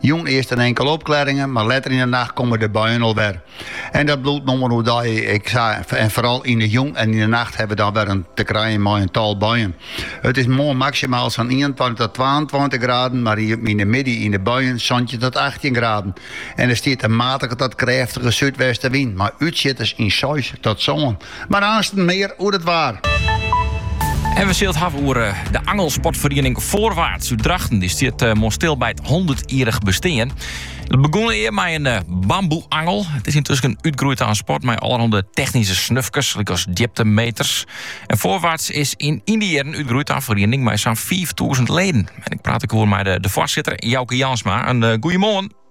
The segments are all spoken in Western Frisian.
Jûn earst in inkele opklaringen, mar letter yn de nacht komme de buien al wer. En dat bliuwt no mar oerdei. ek sa, en foaral yn de jûn en yn de nacht hawwe we dan wer te krijen mei in tal buien. It is moarn maksimaal sa'n ienentweintich ta twaentweintich graden, mar yn de middei yn de buien santjin ta achttjin graden. En der stiet in matige ta krêftige súdwestenwyn mei útsjitters fan seis ta sân. Mar aansten mear oer it waar. En we sille it hawwe oer de angelsportferiening Voorwaarts út Drachten. Dy stiet moarn stil by it hûndertjierrich bestean. It begûn ea mei in bamboeangel. It is yntusken útgroeid ta in sport mei allerhande technyske snufkes, lykas djiptemeters. En Voorwaarts is yn dy jierren útgroeid ta in feriening mei sa'n fiiftûzen leden. En ik praat der oer mei de foarsitter Jouke Jansma. Goeiemoarn.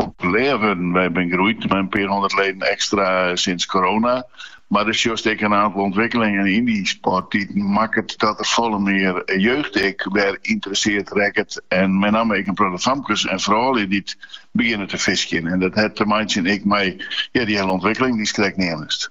populêr wurden. Wy binne groeid mei in pear hûndert leden ekstra sinds corona. Mar der sjochst ek in aantal ûntwikkelingen yn dy sport dy't makket dat der folle mear jeugd ek wer ynteresseerd rekket en mei namme ek in protte famkes en froulju dy't begjinne te fiskjen. En dat hat te meitsjen ek mei dy hiele ûntwikkeling dy'tst krekt neamst.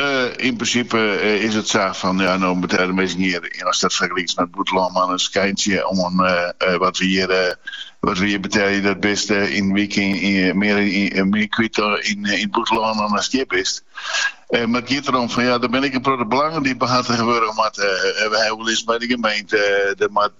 Yn prinsipe is it sa fan ja, no betelje de minsken hjir, as dat fergelikest mei it bûtenlân, mar in skyntsje fan wat we hjir betelje, dat bist yn in wyk mear kwyt yn it bûtenlân ast hjir bist. Mar it giet derom fan ja, der binne ek in protte belangen dy't behartige wurde moatte. We ha wol ris by de gemeente, der moat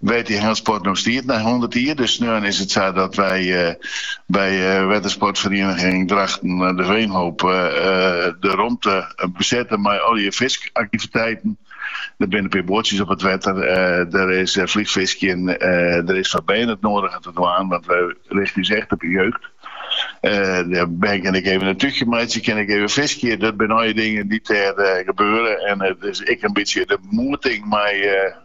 Wêr't de angelsport no stiet nei hûndert jier. Dus sneon is it sa dat wy by wettersportferiening Drachten de Veenhoop de romte besette mei allegear fiskaktiviteiten. Der binne in pear boatsjes op it wetter, der is flychfiskjen, der is foar bern it nodige te dwaan, want wy richten ús echt op de jeugd. De bern kinne ek even in túchje meitsje, kinne ek even fiskje. Dat binne allegear dingen dy't dêr gebeare en it is ek in bytsje de moeting mei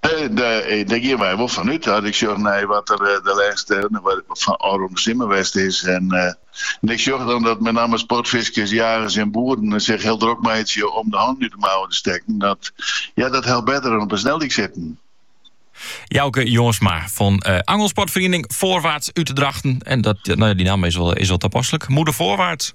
Dêr geane wy wol fan út. As ik sjoch nei wat der de lêste ôfrûne simmer west is en ik sjoch dan dat mei namme sportfiskers, jagers en boeren sich hiel drok meitsje om de hannen út de mouwen te stekken, dat ja, dat helpt better dan op in sneldyk sitten. Jouke Jansma fan Angelsportferiening Voorwaarts út Drachten. En dat, nou ja, die namme is wel, is wel toepasselijk. Moedig Voorwaarts.